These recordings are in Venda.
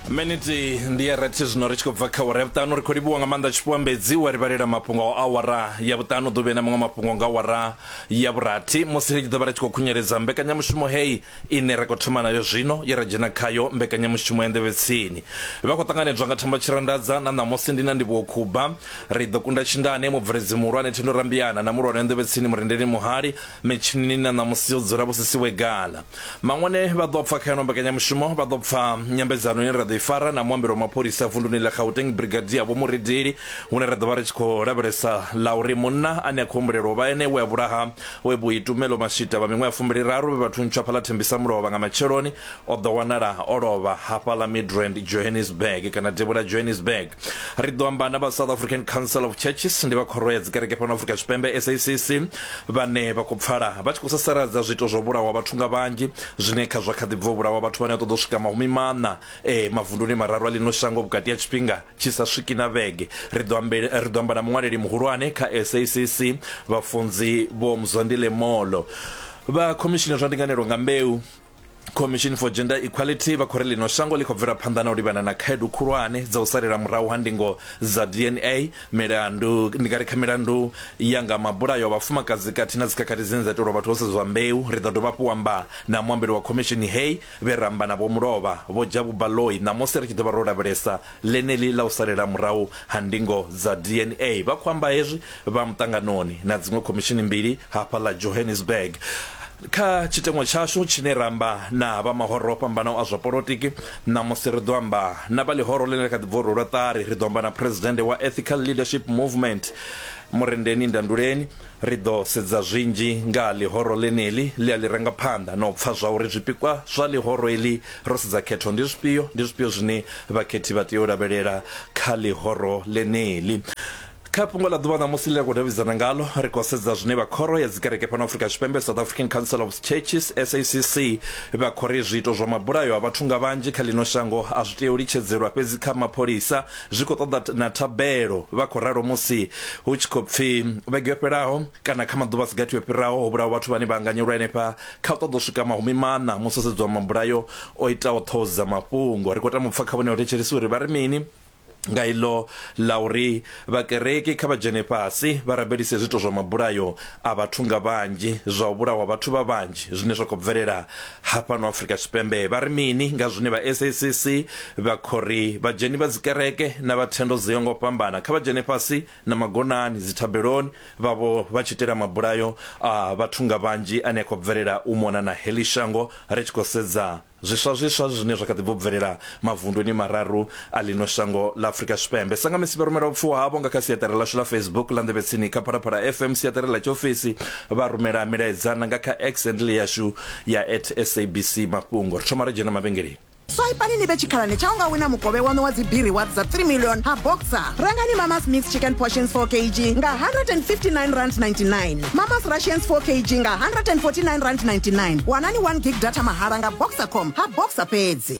miniti ndi ya rathi zwino ri tshi khou bva kha awara ya vhuṱanu ri khou livhuwa nga maanḓa tshipambedzi wa ri vhalela mafhungo a awara ya vhuṱanu ḓuvhe na maṅwe mafhungo nga awara ya vhurathi musi ri tshi ḓo vha ri tshi khou khunyeledza mbekanyamushumo heyi ine ra khou thoma nayo zwino ye ra dzhena khayo mbekanyamushumo ya nḓevhetsini vha khou ṱanganedzwa nga thamba tshirandadza na ṋamusi ndi na ndivhuwo khuba ri ḓo kunda tshindane mubveledzi muhulwane thendo rambiana na mulwane wa nḓevhetsini murendeli muhali Mitshinini na ṋamusi yo dzula vhu si siwe gala. Maṅwone vha ḓo pfa kha ino mbekanyamushumo vha ḓo pfa nyambedzano ine ra ḓo i fara na muambeli wa mapholisa vunduni ḽa Gauteng Brigadier Vho Muridili hune ra ḓo vha ri tshi khou lavhelesa ḽa uri munna ane a khou humbulelwa u vha ene we a vhulaha we vho Itumelo Mashita vha miṅwaha fumbiliraru vhe vha thuntsha fhaḽa Thembisamulovha nga matsheloni o ḓo wanala o lovha hafhaḽa Midrand Johannesburg kana Devhula Johannesburg. ri ḓo amba na vha south african council of churches ndi vha khoro ya dzikereke fhano afrika tshipembe sacc vhane vha khou pfala vha tshi khou sasaladza zwiito zwa vhulawa vhathu nga vhanzhi zwine kha zwa kha ḓi bva vhulawa vhathu vhane a ṱoḓa u swika mahumi maṋa e mavunduni mararu a ḽino shango vhukati ha tshifhinga tshi sa swiki na vhege ri ḓo ri ḓo amba na muṅwaleli muhulwane kha sacc vhafunzi vho mzondile molo vha khomishini zwa ndinganelo nga mbeu Commission for Gender Equality vha khou ri ḽino shango ḽi khou bvela phanḓa na u livhana na khaedu khulwane dza u salela murahu ha ndingo dza DNA milandu ndi nga ri kha milandu ya nga mabulayo a vhafumakadzi khathihi na dzikhakhathi dzine dza itelwa vhathu ho sedzwa mbeu ri ḓo dovha hafhu u amba na muambeli wa khomishini heyi vhe ramba na vho mulovha vho Jabu Baloyi ṋamusi ri tshi ḓo vha ro lavhelesa ḽeneḽi ḽa u salela murahu ha ndingo dza DNA. Vha khou amba hezwi vha muṱanganoni na dziṅwe khomishini mbili hafha ḽa Johannesburg. Kha tshiteṅwa tshashu tshine ra amba na vha mahoro o fhambanaho a zwa polotiki, ṋamusi ri ḓo amba na vha ḽihoro ḽine ḽa kha ḓi bva u rwelwa ṱari, ri ḓo amba na Phresidennde wa Ethical Leadership Movement, Murendeni Ndanduleni, Ri ḓo sedza zwinzhi nga ha ḽihoro ḽeneḽi ḽe a ḽi ranga phanḓa na u pfa zwa uri zwipikwa zwa ḽihoro eḽi ro sedza khetho ndi zwifhio, ndi zwifhio zwine vhakhethi vha tea u lavhelela kha ḽihoro ḽeneḽi. Kha fhungo ḽa ḓuvha ṋamusi ḽe ra khou davhidzana ngaḽo, ri khou sedza zwine vha Khoro ya Dzikereke fhano Afrika Tshipembe, South African Council of Churches, SACC, vha khou ri zwiito zwa mabulayo a vhathu nga vhanzhi kha ḽino shango a zwi tei u litshedzelwa fhedzi kha mapholisa Zwi khou ṱoḓa na thabelo, vha khou ralo musi hu tshi khou pfi vhege yo fhelaho kana kha maḓuvha a si gathi o fhiraho ho vhulawa vhathu vhane vha anganyelwa henefha kha u ṱoḓa u swika mahumi maṋa musi ho sedzwa mabulayo o itaho ṱhoho dza mafhungo. Ri khou tama u pfa kha vhone vhathetshelesi uri vha ri mini nga iḽo ḽa uri vhakereki kha vha dzhene fhasi vha rabelise zwiito zwa mabulayo a vhathu nga vhanzhi, zwa u vhulawa vhathu vha vhanzhi zwine zwa khou bvelela ha fhano afrika tshipembe vha ri mini nga zwine vha sacc vha khori vhadzheni vha dzikereke na vha thendo dzo ngo fhambana kha vha dzhene fhasi na magonani dzithabeloni vhavho vha tshi itela mabulayo a vhathu nga vhanzhi ane a khou bvelela u mona na heḽi shango ri tshi khou sedza zwiswa zwiswa zwine zwa kha ḓi bvo bvelela Mavunduni mararu a ḽino shango ḽa Afrika Tshipembe. Sangamisi vha rumela vhupfiwa havho nga kha siaṱari ḽashu ḽa Facebook ḽa Nḓevhe Tsini kha Phalaphala FM, siaṱari ḽa tshiofisi, vha rumela milaedza na nga kha X handle yashu ya at SABC Mafhungo. Ri thoma ra dzhena mavhengeleni. Swaipani ni vhe tshikhalani tsha u nga wina mukovhe waṋu wa dzibiri wa dza 3 million ha Boxer. Rengani Mama's Mixed Chicken Portions 4 kg nga R159.99, Mama's Rations 4 kg nga R149.99. Wanani 1 gig data mahala nga Boxercom ha Boxer fhedzi.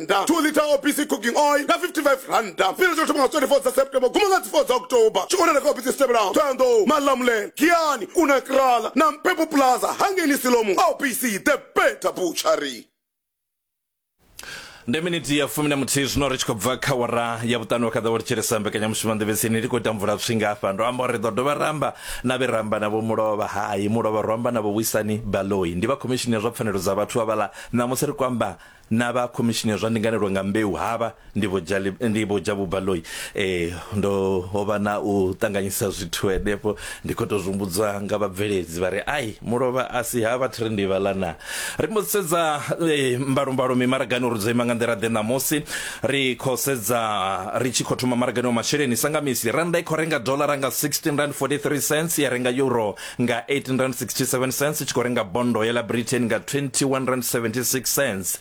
randa 2 liter obc cooking oil nga 55 randa fhira tsho thoma nga 24 dza september guma nga dzi 4 dza october tshi wanala kha obc dzi tevhelaho thoyandou malamulele giani unakrala na mpepo plaza hangeni silomu obc the better butchery ndi miniti ya fumi na muthihi zwino ri tshi khou bva kha wara ya vhuṱanu wa khaḓa wo litshelesa mbekanyamushumo nḓevhetsini ri khou ita mvula pfhi ngafha ndo amba uri ri ḓo dovha ramba na vhe ramba navho mulovha hai mulovha ro amba navho wisani baloi ndi vha khomishini ya zwa pfanelo dza vhathu avhala ṋamusi ri kwamba Na vha Khomishini ya zwa Ndinganelo nga Mbeu havha ndi Vho Jali, ndi Vho Jabu Baloyi. Ee, ndo ho vha na u ṱanganyisa zwithu henefho, ndi khou tou zwi humbudzwa nga vhabveledzi vha ri, Ai, mulovha a si ha vha thiri ndivha ḽa naa. Ri mbo ḓi sedza eh, mbalombalo mimaragani uri dzo ima nga nḓila-ḓe ṋamusi. Ri khou sedza ri tshi khou thoma maragani wa masheleni, sa nga misi, rannda i khou renga doḽara nga 16 rand 43 cents ya renga euro nga 1867 cents u tshi khou renga bondo ya ḽa britain nga 2176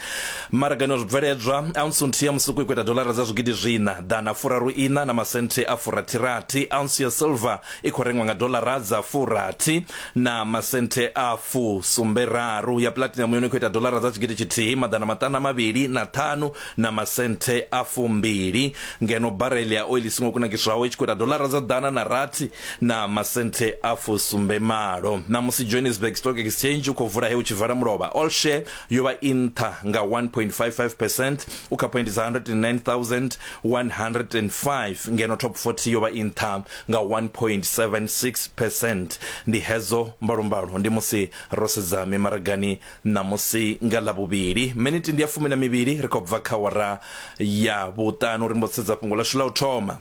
maragani wa zwibveledzwa ounce nthihi ya musuku i khou ita dolara dza zwigidi zwina ḓana furaru ina na masenthe a furathirathi ounce ya silver i khou rengwa nga dolara dza furathi na masenthe a fu sumberaru ya platinum yone i khou ita dolara dza tshigidi tshithihi maḓana maṱanu a mavhili na ṱhanu na masenthe a fumbili ngeno barele ya oili songo kunakiswaho i tshi khou ita dolara dza ḓana na rathi na masenthe a fusumbe malo ṋamusi johannesburg stock exchange u khou vula he u tshi vala mulovha all share yo vha i nṱha nga 1.55 percent u kha point dza 109105 ngeno top 40 yo vha i nṱha nga 1.76 percent ndi hedzo mbalombalo ndi musi ro sedza mimaragani Ṋamusi nga Ḽavhuvhili, miniti ndi ya fumi na mivhili ri khou bva kha awara ya vhuṱanu ri mbo sedza fhungo ḽashu ḽa u thoma.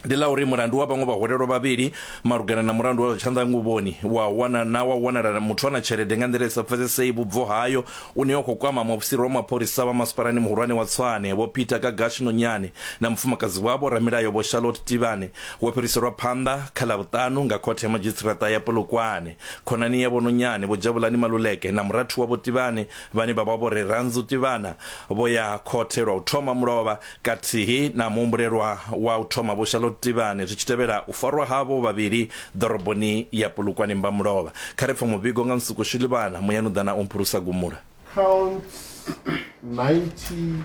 Ndi ḽa uri mulandu wa vhaṅwe vhahwelelwa vhavhili malugana na mulandu wa zwa tshanḓanguvhoni wa wana na wa wanala muthu ana tshelede nga nḓila i sa pfesesei vhubvo hayo une wa khou kwama muofisiri wa mapholisa vha masipalani muhulwane wa Tshwane Vho Peter Gagashi Nonyane na mufumakadzi wavho ramilayo Vho Charlotte Tivhane wo fhiriselwa phanḓa kha ḽa vhuṱanu nga khothe ya madzhisiṱiraṱa ya Polokwane Khonani ya Vho Nonyane, Vho Jabulani Maluleke na murathu wavho Tivhani vhane vha vha Vho Rerandzu Tivhana vho ya khothe lwa u thoma mulovha kathihi na muhumbulelwa wa u thoma Vho Charlotte Tivhani zwi tshi tevhela u farwa havho vhavhili ḓoroboni ya Polokwane Mbamulovha. Kha ri pfe muvhigo nga Nsuku Shilivhana, Muyanuḓana o mphulusa gumula. Counts 90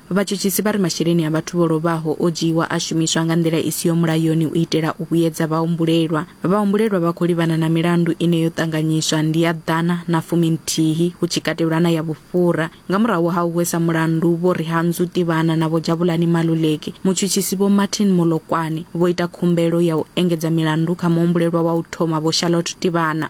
Vhatshutshisi vha ri masheleni a vhathu vho lovhaho o dzhiiwa a shumiswa nga nḓila i siho mulayoni u itela u vhuyedza vhahumbulelwa. Vhahumbulelwa vha khou livhana na milandu ine yo ṱanganyiswa ndi ya ḓana na fuminthihi hu tshi katelwa na ya vhufhura. Nga murahu ha u hwesa mulandu Vho Rihandzu Tivhana na Vho Jabulani Maluleki, mutshutshisi Vho Martin Molokwane vho ita khumbelo ya u engedza milandu kha muhumbulelwa wa u thoma Vho Charlotte Tivhana.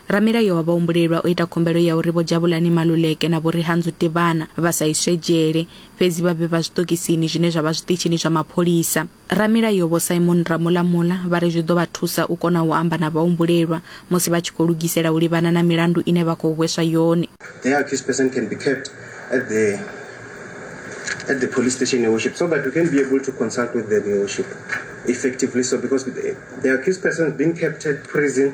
Ramilayo wa vhahumbulelwa o ita khumbelo ya uri Vho Jabulani Maluleke na Vho Rihandzu Tivhana vha sa iswe dzhele, fhedzi vha vhe vha zwiṱokisini zwine zwa vha zwiṱitshini zwa mapholisa. Ramilayo Vho Simon Ramulamula vha ri zwi ḓo vha thusa u kona u amba na vhahumbulelwa musi vha tshi khou lugisela u livhana na milandu ine vha khou hweswa yone. The accused person can be kept at the at the police station, Your Worship, so that we can be able to consult with them, Your Worship, effectively so because the, the accused person has been kept at prison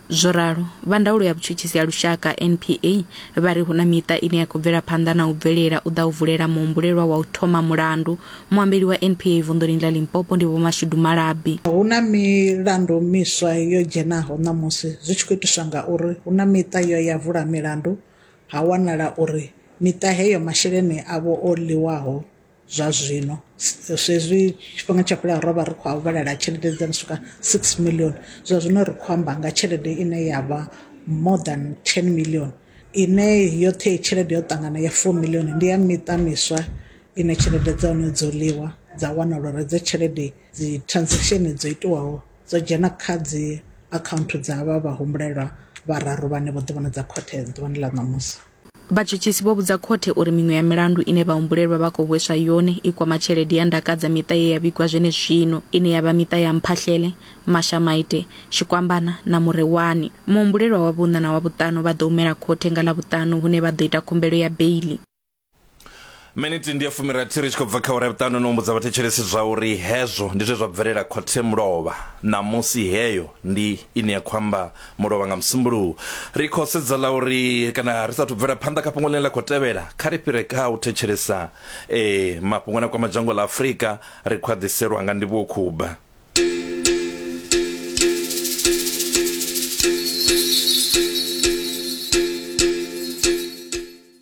Zwo ralo, vha ndaulo ya vhutshutshisi ha lushaka NPA vha ri hu na miṱa ine ya khou bvela phanḓa na u bvelela u ḓa u vulela muhumbulelwa wa u thoma mulandu. Muambeli wa NPA vunḓuni ḽa Limpopo ndi Vho Mashudu Malabi. Hu na milandu miswa yo dzhenaho ṋamusi zwi tshi khou itiswa ngauri hu na miṱa yo ya vula milandu ha wanala uri miṱa heyo masheleni avho o ḽiwaho zwa zwino swezwi tshifhinga tsha fhela rovha ri khou vhalela tshelede dza no swika six million zwa zwino ri khou amba nga tshelede ine ya vha more than ten million ine yoṱhe i tshelede yo ṱangana ya four million ndi ya miṱa miswa ine tshelede dza hone dzo ḽiwa dza wana lwa dza tshelede dzi transaction dzo itiwaho dzo dzhena kha dzi account dza vha vha humbulelwa vhararu vhane vho ḓi vhona dza khothe ḓuvhani ḽa ṋamusi. Vhatshutshisi vho vhudza khothe uri miṅwe ya milandu ine vhahumbulelwa vha khou hweswa yone i kwama tshelede ya ndaka dza miṱa ye ya vhigwa zwenezwino, ine ya vha miṱa ya Mphahlele, Mashamaite, Tshikwambana na Murewani. Muhumbulelwa wa vhuṋa na wa vhuṱanu vha ḓo humela khothe nga Ḽavhuṱanu hune vha ḓo ita khumbelo ya beiḽi. miniti ndi ya fumirathi ri tshi khou bva kha ura vhuṱanu no humbudza vhathetshelesi zwa uri hezwo ndi zwe zwa bvelela khothe mulovha ṋamusi heyo ndi ine ya khou amba mulovha nga musumbuluwo ri khou sedza la uri kana ri sathu bvela phanḓa kha fhungo ḽine ḽa khou tevhela kha ri fhire kha u thetshelesa eh, mafhungo na kwama dzhango ḽa afurika ri khou aḓiselwa nga ndivhuwo khuba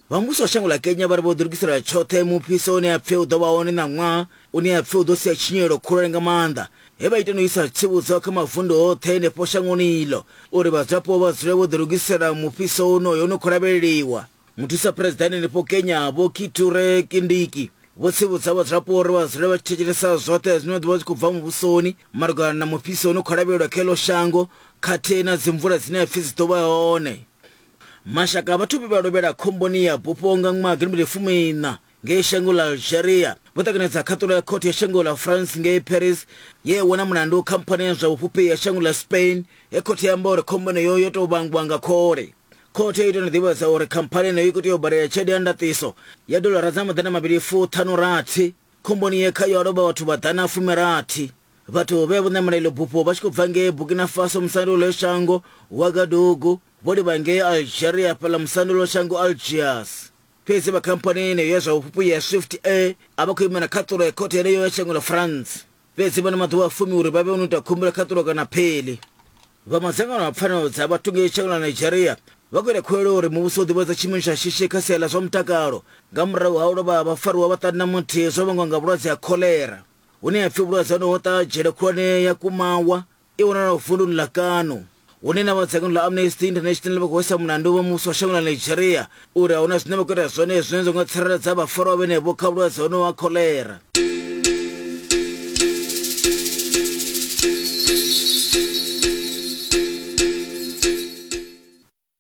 Vha muvhuso wa shango ḽa Kenya vha ri vho ḓilugiselela tshoṱhe mufhiso une a pfe u ḓo vha hone ṋaṅwaha une a pfe u ḓo sia tshinyalelo khulwane nga maanḓa he vha ita no isa tsivhudzo kha mavundu oṱhe henefho shangoni iḽo uri vhadzulapo vha dzule vho ḓilugisela mufhiso wonoyo une khou lavheleliwa. Muthusa Phresidennde henefho Kenya Vho Kithure Kindiki vho tsivhudza vhadzulapo uri vha dzule vha tshi thetshelesa zwoṱhe zwine zwa ḓo vha zwi khou bva muvhusoni malugana na mufhiso une khou lavhelelwa kha heḽo shango khathihi na dzimvula dzine a pfe dzi ḓo vha hone Mashaka a vhathu vhe vha lovhela khomboni ya bufho nga ṅwaha gidimmbili fumi iṋa ngei shango ḽa Algeria vho ṱanganedza khaṱulo ya khothe ya shango ḽa France ngei Paris ye ya wana mulandu khamphani ya zwa vhufhufhi ya shango ḽa Spain he khothe ya amba uri khombo yeneyo yo tou vhangwa nga khole. Khothe i tou no ḓivhadza uri khamphani yeneyo i khou tea u badela tshelede ya ndaṱiso ya dolara dza maḓana mavhili fu ṱhanu rathi khomboni ye khayo ha lovha vhathu vhaḓana fumi rathi. Vhathu vhe vho ṋamela iḽo bufho vha tshi khou bva ngei Burkina Faso musanda wa ḽeyo shango Ouagadougou Vho livha ngei Algeria fhaḽa musanda lwa shango Algiers. Fhedzi vha khamphani yeneyo ya zwa vhufhufhu ya Swift Air a vha khou imela khaṱulo ya khothe yeneyo ya shango ḽa France. Fhedzi vha na maḓuvha a fumi uri vha vhe vho no ita khumbelo khaṱulo kana aphili. Vha madzangano a pfanelo dza vhathu ngei shango ḽa Nigeria vha khou ita khuwelelo uri muvhuso u ḓivhadze tshiimo tsha shishi kha sia ḽa zwa mutakalo nga murahu ha u lovha ha vhafariwa vha ṱanu na muthihi zwo vhangwa nga vhulwadze ha kholera hune ha pfi vhulwadze honoho ho ṱaha dzhele khulwane ya Kumawa I wanalaho vunduni ḽa Kano, hune na vha dzangano ḽa Amnesty International vha khou isa mulandu vha muvhuso wa shango ḽa Nigeria uri a huna zwine vha khou ita zwone zwine zwa nga tsireledza vhafarwa vhenevho kha vhulwadze honoho ha kholera.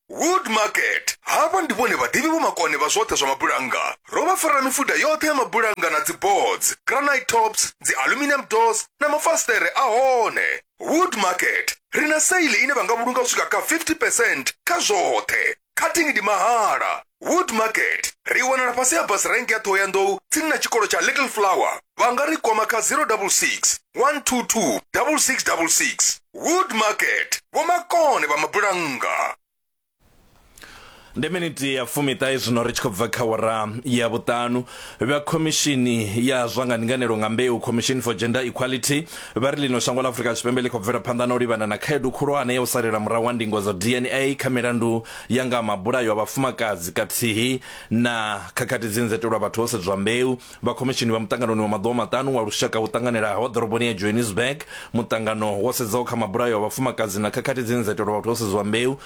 Wood Market. Havha ndi vhone vhaḓivhi vhomakone vha zwoṱhe zwa mabulannga. Ro vha farela mifuda yoṱhe ya mabulannga na dziboards, granite tops, dzi-aluminium doors na mafasiṱere a hone. Wood Market. Ri na sale ine vha nga vhulunga u swika kha 50 percent kha zwoṱhe. Cutting ndi mahala. wood market ri wanala fhasi ha bus rank ya ṱhohoyanḓou tsini na tshikolo tsha little flower vha nga ri kwama kha 066 122 6666 wood market vhomakone vha mabulannga ndi miniti ya fumiṱahe zwino ri tshi khou bva kha wara ya vhuṱanu vha khomishini ya zwa nga ndinganelo nga mbeu commission for gender equality vha ri ḽino shango ḽa afurika tshipembe ḽi khou bvela phanḓa na u livhana na khaedu khulwane ya u salela murahu ha ndingo dza dna kha milandu ya nga mabulayo a vhafumakadzi kathihi na khakhathi dzi nzetelwa vhathu ho sedzwa mbeu vha khomishini vha muṱanganoni wa maḓuvha maṱanu wa lushaka wo ṱanganelaho ḓoroboni ya johannesburg muṱangano wo sedzaho kha mabulayo a vhafumakadzi na khakhathi dzi nzetelwa vhathu ho sedzwa mbeu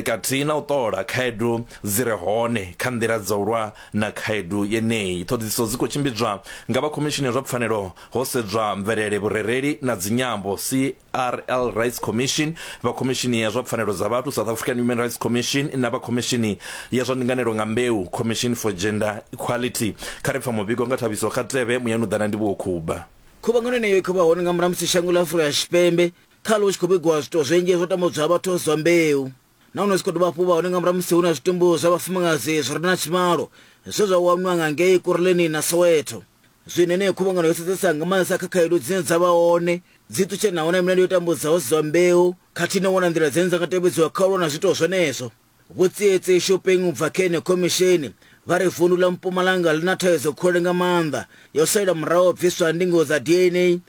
kathihi na u ṱola khaedu dzi re hone kha nḓila dza u lwa Na khaedu yeneyi, ṱhoḓisiso dzi khou tshimbidzwa nga vha Khomishini ya zwa Pfanelo, ho sedzwa mvelele, vhurereli na dzinyambo, CRL Rights Commission, vha Khomishini ya zwa Pfanelo dza Vhathu, South African Human Rights Commission, na vha Khomishini ya zwa Ndinganelo nga Mbeu, Commission for Gender Equality. Kha ri pfa muvhigo nga thabiso kha TV muyani u ḓa na Ndivhuwo Khuba. Khuvhangano yeneyo i khou vha hone nga murahu ha musi shango ḽa Afurika Tshipembe khaḽo hu tshi khou vhigiwa zwiito zwinzhi zwo tambudzaho vhathu vha si vha mbeu. nahone zwi khou dovha hafhu vha hone nga murahu musi hu na zwitumbu zwa vhafumakadzi zwi re na tshivhalo zwe zwa wanwa nga ngei kurleni na soweto zwine yeneyo khuvhangano yo sedzesa nga maanḓesa kha khaedu dzine dza vha hone dzi ṱutshanaho na milandu yo tambudzaho dzi zwa mbeu khathihi na u wana nḓila dzine dza nga tevhedziwa kha u lwa na zwiitwa zwenezwo vhutsietsi shopping u bva kha yeneyo khomishini vha ri vundu ḽa mpumalanga ḽi na thaidzo khole nga maanḓa yo salela muraho bviswa ndingo dza dna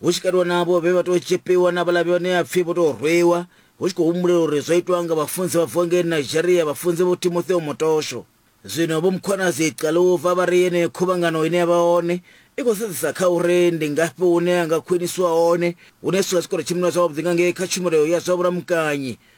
hu tshi katelwa na avho vhe vha tou tzhipiwa na vhaḽa vhane a pfi vho tou rwiwa, hu tshi khou humbulela uri zwo itwa nga vhafunzi vha bvaho ngei Nigeria vha funze Vho Timotheo Motosho. Zwino Vho Mkhwanazi Xaluva vha ri yeneyo khuvhangano ine ya vha hone i khou sedzesa kha uri ndi ngafhi hune ha nga khwiniswa hone hune zwithu zwa tshi khou ri tshimbilwa zwavhuḓi nga ngei kha tshumelo ya zwa vhulamukanyi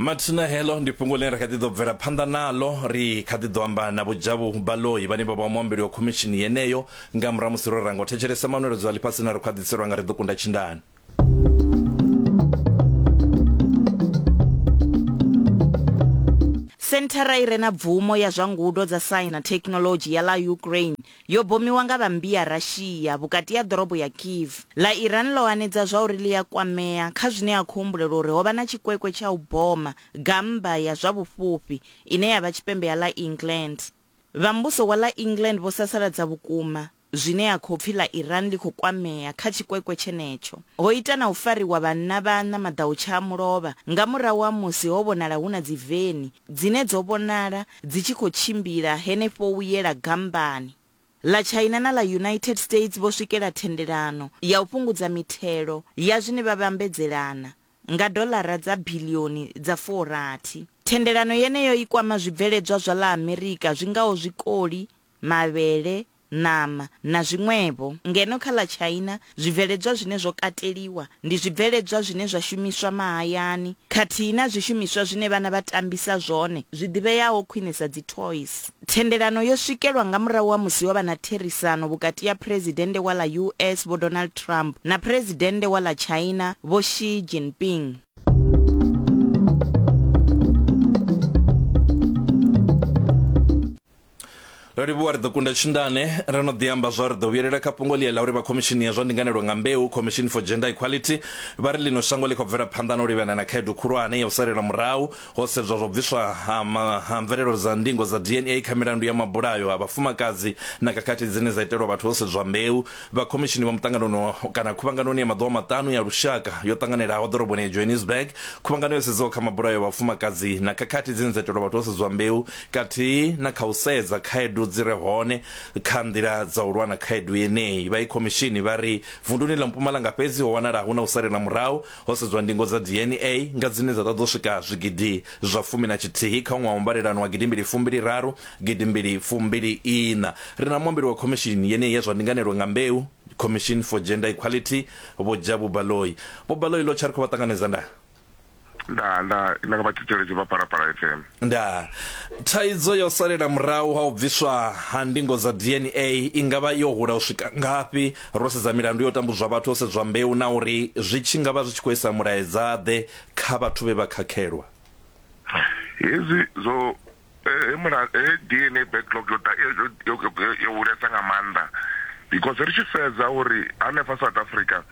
mathina heḽo ndi fhungo ḽine ra kha ḓi ḓo bvela phanḓa naḽo ri kha ḓi ḓo amba na vhojavhu baloi vhane vha vha muambeli wa khomishini yeneyo nga murahu musi ro ranga u thetshelesa manweledzo a ḽifhasi na ri khou a ḓiselwa nga ri ḓo kunda tshindani Senthara i re na bvumo ya zwa ngudo dza saintsi na thekhinoḽodzhi ya ḽa Ukraine Yo bomiwa nga vha mmbi ya Russia vhukati ya ḓorobo ya Kyiv. Ḽa Iran ḽo hanedza zwauri ḽi a kwamea kha zwine a khou humbulelwa uri ho vha na tshikwekwe tsha u boma gammba ya zwa vhufhufhi ine ya vha tshipembe ha ḽa England. Vha muvhuso wa ḽa England vho sasaladza vhukuma zwine a khou pfi ḽa Iran ḽi khou kwamea kha tshikwekwe tshenetsho. Ho ita na u fariwa vhanna vhaṋa maḓautsha a mulovha nga murahu ha musi ho vhonala hu na dziveni dzine dzo vhonala dzi tshi khou tshimbila henefho u yela gambani ḽa China na ḽa United States vho swikela thendelano ya u fhungudza mithelo ya zwine vha vhambedzelana nga doḽara dza biḽioni dza furathi. Thendelano yeneyo i kwama zwibveledzwa zwa ḽa Amerika zwi ngaho zwikoli, mavhele, ṋama na zwiṅwevho, ngeno kha ḽa China zwibveledzwa zwine zwo kateliwa ndi zwibveledzwa zwine zwa shumiswa mahayani khathihi na zwishumiswa zwine vhana vha tambisa zwone zwi ḓivheaho khwine sa dzi toys. Thendelano yo swikelwa nga murahu ha musi ho vha na therisano vhukati ha Phresidennde wa ḽa US Vho Donald Trump na Phresidennde wa ḽa China Vho Xi Jinping. ro livhuwa ri ḓo kunda tshindane ri no ḓi amba zwa ri ḓo vhuyelela kha fhungo ḽia ḽa uri vha khomishini ya zwa ndinganelo nga mbeu commission for gender equality vha ri ḽino shango ḽi khou bvela phanḓa na u livhana na khaedu khulwane ya u salela murahu ho sedzwa zwa bviswa ha, ha mvelelo dza ndingo dza dna kha milandu ya mabulayo ha vhafumakadzi na khakhathi dzine dza itelwa vhathu ho sedzwa mbeu vha khomishini vha muṱanganoni kana khuvhanganoni ya maḓuvha maṱanu ya lushaka yo ṱanganelaho ḓoroboni ya johannesburg khuvhangano yo sedzaho kha mabulayo ya vhafumakadzi na khakhathi dzine dza itelwa vhathu ho sedzwa mbeu kathihi na kha u sedza khaedu dzi re hone kha nḓila dza u lwa na khaedu yeneyi. Vha Ikhomishini vha ri vunduni ḽa Mpumalanga fhedzi ho wanala hu na u salela murahu ho sedzwa ndingo dza DNA nga dzine dza ṱoḓa u swika zwigidi zwa fumi na tshithihi kha ṅwaha wa mbalelano wa gidi mbili fumbili raru, gidi mbili fumbili iṋa. Ri na muambeli wa khomishini yeneyi ya zwa ndinganelo nga mbeu, Commission for Gender Equality, Vho Jabu Baloyi. Vho Baloyi, ḽo tsha ri khou vha ṱanganedza nda. ndaa ndaa nda nga vha thetshelesi vha phalaphala fm ndaa thaidzo ya u salela murahu ha u bviswa ha ndingo dza dna i nga vha yo hula u swika ngafhi ro sedza milandu yo tambudzwa vhathu ho sedzwa mbeu na uri zwi tshi nga vha zwi tshi khou isa mulaedzaḓe kha vhathu vhe vha khakhelwa hezwi zwo he mula he DNA backlog yo yo hulesa nga maanḓa because ri tshi sedza uri hanefha South Africa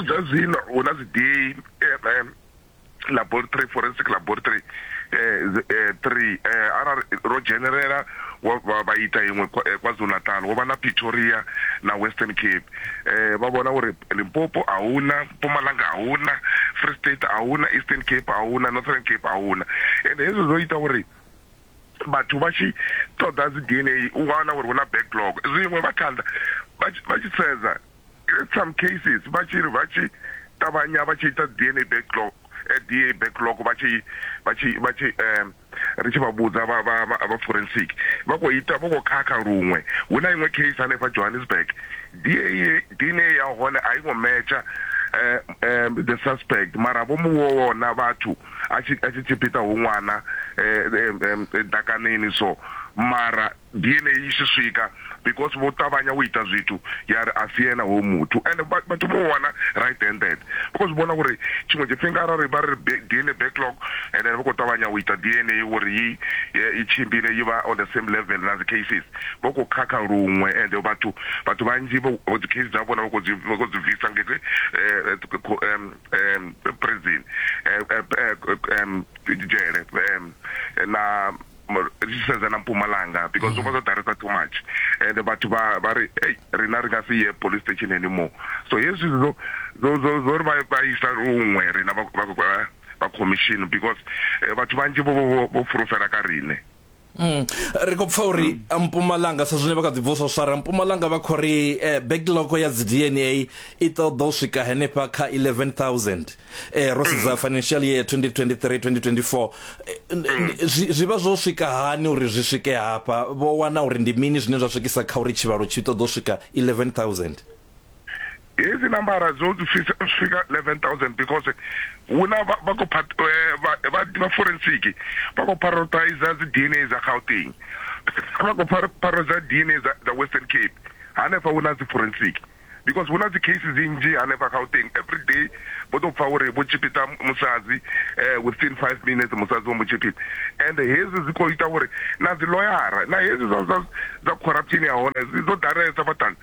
zwa zwino hu na dzi DNA laboratory forensic laboratory eh, eh, three eh, arali ro dzhenelela vha ita iṅwe eh, kwazulu natal wo vha na pretoria na western cape eh vha vhona uri Limpopo a huna Mpumalanga a huna Free State a huna Eastern Cape a huna Northern Cape a huna and hezwo zwo ita uri vhathu vha tshi ṱoḓa dzi DNA u nga wana uri hu na backlog zwiṅwe vha thanda vha tshi sedza in some cases vha tshi ri vha tshi ṱavhanya vha tshi ita DNA backlog eh, DNA backlog vha tshi vha tshi vha tshi um ri tshi vha vhudza vha vha vha vha forensic vha khou ita vho khou khakha luṅwe hu na iṅwe case hanefha Johannesburg DNA DNA ya hone a i ngo metsha eh, eh, the suspect mara vho mu vhona vhathu a tshi a tshi tshipita hu ṅwana eh, eh, eh, dakaneni so mara Ndi yeneyi i tshi swika because vho ṱavhanya u ita zwithu ya ri a si ene hoyu muthu and vhathu vho wana right handed because vhona uri tshiṅwe tshifhinga arali vha ri DNA backlog and then vha khou ṱavhanya u ita DNA uri i i tshimbile i vha on the same level na dzi cases vho khou khakha luṅwe and vhathu vhathu vhanzhi vho dzi case dza vhona vha khou dzi vha khou dzi bvisa nga ite prison dzhele na ri tshi sedza na mpumalanga because zwo vha zwo ḓalesa too much and vhathu vha vha ri ei rina ri nga si ye police station anymore so hezwi zwo zwo zwo ri vha vha isa luṅwe rina vha vha commission because eh, vhathu vhanzhi vho vho vho furufela ka rine Mm. ri khou pfa uri mm. mpumalanga sa zwine vha kha dzibvusa u swara mpumalanga vha khou ri eh, backlog ya dzi dna i ṱoḓa u swika henefha kha 11000 eh ro sedza financial year 2023 2024 eh, zwi vha zwo swika hani uri zwi swike hafha vho wana uri ndi mini zwine zwa swikisa kha uri tshivhalo tshi ṱoḓo swika 11000 hizi nambara dzo swika 11000 because huna vha khou eh, vha forensic vha khou prioritize dzi dna dza gauteng vha khou prioritize dna dza western cape hanefha huna dzi forensic because huna dzi case dzi nnzhi hanefha Gauteng everyday vho to pfa uri vho tshipita musadzi within 5 minutes musadzi vho mu tshipita and hezwi zwi kho ita uri na dzi loyara na hezwi zwa zwa dza corruption ya hone zwi ḓo ḓalesa vhathani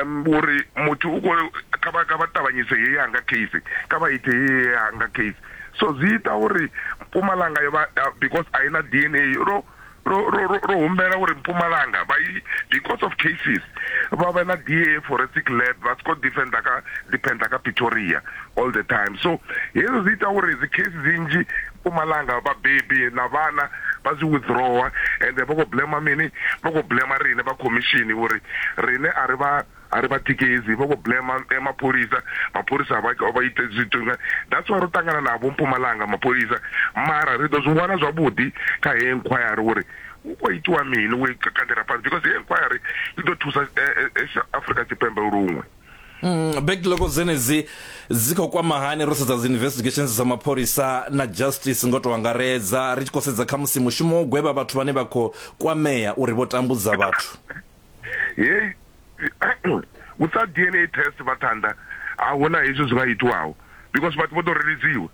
um uri muthu u kho kha vha kha vha ṱavhanyise ye yanga case kha vha ite ye yanga case so zwi ita uri Mpumalanga yo vha because a ina DNA ro lwo lwo humbela uri Mpumalanga vha i because of cases vha vhe na DA forensic lab vha siko defender kha depender kha Pretoria all the time so hezwi zwi ita uri dzi case dzi nnzhi Mpumalanga vhabebi na vhana vha zwi withdrawer and vha khou blema mini vha khou blema riṋe vha khomishini uri riṋe a ri vha Ari vha tikedzi vho vho blema mapholisa mapholisa a vha a vha ite zwithu nga that's why ro ṱangana na vho Mpumalanga mapholisa mara ri ḓo zwi wana zwavhuḓi kha he inquiry uri hu kho itiwa mini we kandela fhasi because he inquiry i ḓo thusa Afrika Tshipembe luṅwe Mm, backlog dzenedzi dzi khou kwama hani ro sedza dzi investigations dza mapholisa na justice ngo to angaredza ri tshi khou sedza kha musi mushumo wo gwevha vhathu vhane vha khou kwamea uri vho tambudza vhathu hei u sa dna test vhaṱhanda a huna hezwi zwi nga itiwaho because vhathu vho ḓo reledziwa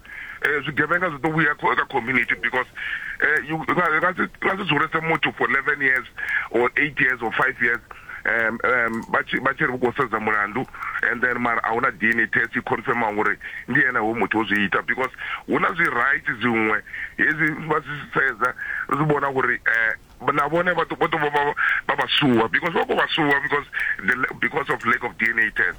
um zwigevhenga zwi ḓo vhuya kha community because um nga si dzulese muthu for eleven years or eight years or five years um um vha tshi vha tshi ri vhu khou sedza mulandu and then mara a huna dna test i confirma ngori ndi ene ho muthu o zwi ita because hu na zwi right dziṅwe hezwi vha zwi sedza zwi vhona ngori um na vhone vha ḓo vha ḓo vha vha vha sure because vha khou vha sure because the because of lack of DNA test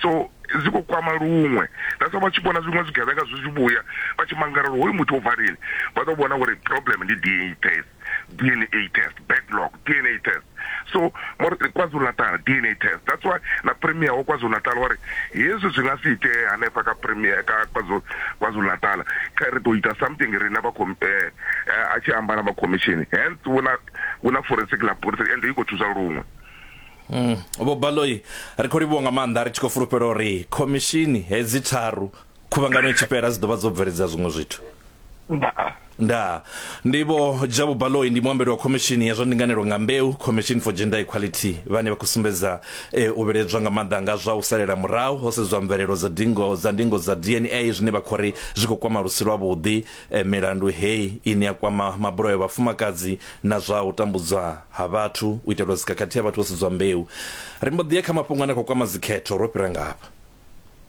so zwi khou kwama luṅwe that's vha tshi vhona zwiṅwe zwigevhenga zwi tshi vhuya vha tshi mangala uri hoyu muthu o bva lini vha ḓo vhona uri problem ndi DNA test DNA test backlog DNA test so more KwaZulu Natal DNA test that's why na premier wa KwaZulu Natal wa ri hezwi zwi nga si itee hanefha kha premier kha KwaZulu KwaZulu Natal kha ri ḓo ita something rina vha khou eh, eh, a tshi amba na vha khomishini hence vhu na vhu na forensic laboratory and i khou thusa luṅwe Mm. Vho Baloi ri khou livhuwa nga maanḓa ri tshi khou fulufhela uri khomishini hedzi tharu khuvhangano itshi fhela dzi ḓovha dzo bveledza zwiṅwe zwithu. ndaa Nda ndi vho Jabu Baloi ndi muambeli wa khomishini ya zwa ndinganelo nga mbeu Commission for Gender Equality vhane vha khou sumbedza eh, u vheledzwa nga maanḓa nga zwa u salela murahu ho sedzwa mvelelo dza dingo dza ndingo dza DNA zwine vha khou ri zwi khou kwama lusi lwa vhuḓi E, milandu hei ine ya kwama mabulayo a vhafumakadzi na zwa u tambudzwa ha vhathu u itelwa dzikhakhathi ha vhathu vho sedzwa mbeu. Ri mbo ḓi ya kha mafhungo ane a khou kwama dzikhetho, ro fhira ngafha.